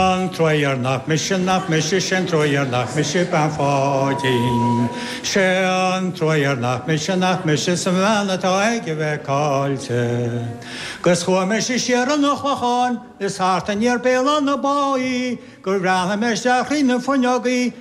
An trua ghéar nach mise nach mise Sé'n trua ghéar nach mise Bean Pháidín Sé'n trua ghéar nach mise nach mise 'S an bhean atá aige bheith caillte 'Gus chuaigh mise siar chun an Chlocháin Is thart aniar Béal Átha na Báighe Gur bhreathnaigh mé isteach thríd na fuinneogaí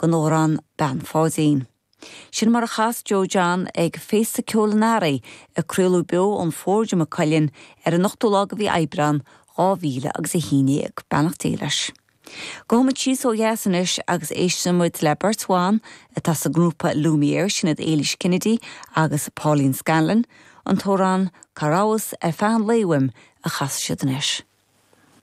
den amhrán Bean Pháidín. Sin mar a chas Joe John ag Féasta Ceoil an Earraigh, a craoladh beo ón Forge i Maigh Cuilinn ar an 8ú lá de mhí Aibreán, dhá mhíle agus a haon dhéag. Beannacht Dé leis. Gabhfaidh muid síos ó dheas anois agus éistfidh muid le beirt bhan atá sa ngrúpa Lumiere, sin iad Éilís Kennedy agus Pauline Scanlon. An t-amhrán Cá rabhais ar feadh an lae uaim a chasfas siad anois.